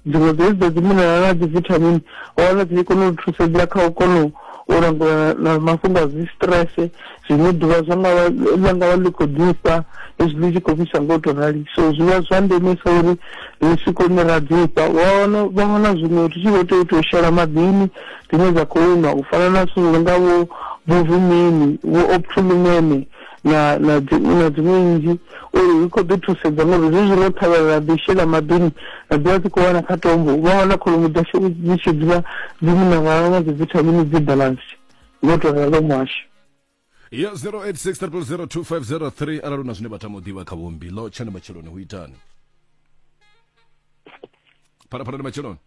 Dziṅwe dza hedziḽa dzi minerala na dzi vithamini hone dzi kona u thusedza kha u kona u langula na mafhungo a dzi stress zwine ḓuvha zwa nga vha ḽa nga vha ḽi khou ḓifha hezwi ḽi tshi khou fhisa nga u to rali so zwi vha zwa ndemesa uri ri si kone ra ḓifha wa wana vha wana zwiṅwe ri tshi vho tea u ita u shela maḓini dzine dza khou nwa u fana na zwithu zwi nga vho vho vumini vho optolumene na na dziṅwe na dziṅwe nnzhi uri ri khou ḓi thusedza ngori zwi zwino ṱhavhela ra ḓi shela maḓini ra dzula dzi khou wana kha tombo vha wana kholomo dzashu dzi tshi dzula dzi minarala na dzivithamini dzi balance ngo to ralo muhasho ya 0863002503 arali na zwine vha tama u ḓivha kha vhombi lo tshani matsheloni hu itani phalaphalani matsheloni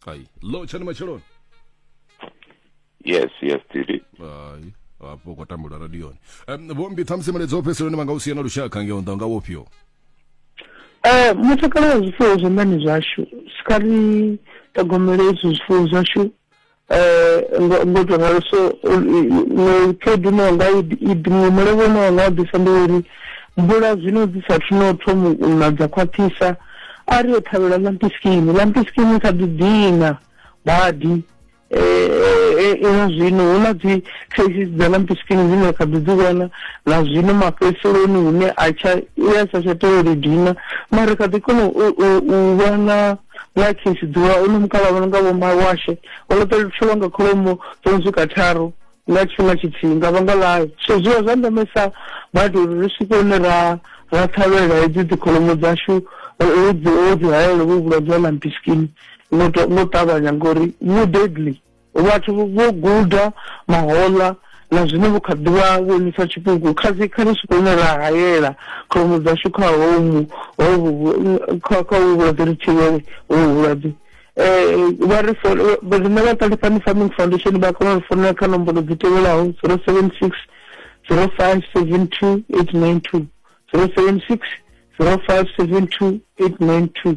ai lo tshani matsheloni yes yes tiri ai hafho kwa tambula radioni um, vhombi ṱhamusi miledzo fheseloni vha nga u sia na lushaka ngeo nda nga wofhio Eh, mutakalo wa zwifuwo zwanḓani zwashu sikari ṱhogomelo izwi zwifuwo zwashu Mbudzo nga luso khaedu ine yanga iḓi mulevho une wanga u ḓisa ndi uri mvula zwino dzi sa thu no thoma u na dza khwaṱhisa a ri yo ṱhavhela lampiskini, lampiskini i kha ḓi dina badi ino zwino hu na dzi traces dza lampiskini dzine ra kha ḓi dzi vhona na zwino mafhedziseloni hune a tsha i a sa tsha tea uri dina mara ri kha ḓi kona u vhona. ḽa khisi ḓuvha o no mukavha vha no nga vho mawashe o ḽo ṱolwa nga kholomo dzo no swika tharu nga tshifhinga tshithihi nga vhanga ḽayo so zwi vha zwa ndemesa badi uri ri swike hune ra ra ṱhavhelela hedzi dzi kholomo dzashu dzi o dzi hayela vho vhulwadze ha lampiskin ngo ṱavhanya ngori vhu deadly Vhathu vho guda mahoḽa na zwino vho kha ḓi vha vhonisa tshipuku. Kha dzi kha ri swike hune ra hayela kholomo dzashu kha homu hovhu kha kha uvhu vhulwadze ri thivhele uvhu vhulwadze. Vha ri fola riṋe vha Ṱalifhani Farming Foundation vha kona uri founela kha nomboro dzi tevhelaho zero seven six zero five seven two eight nine two zero seven six zero five seven two eight nine two.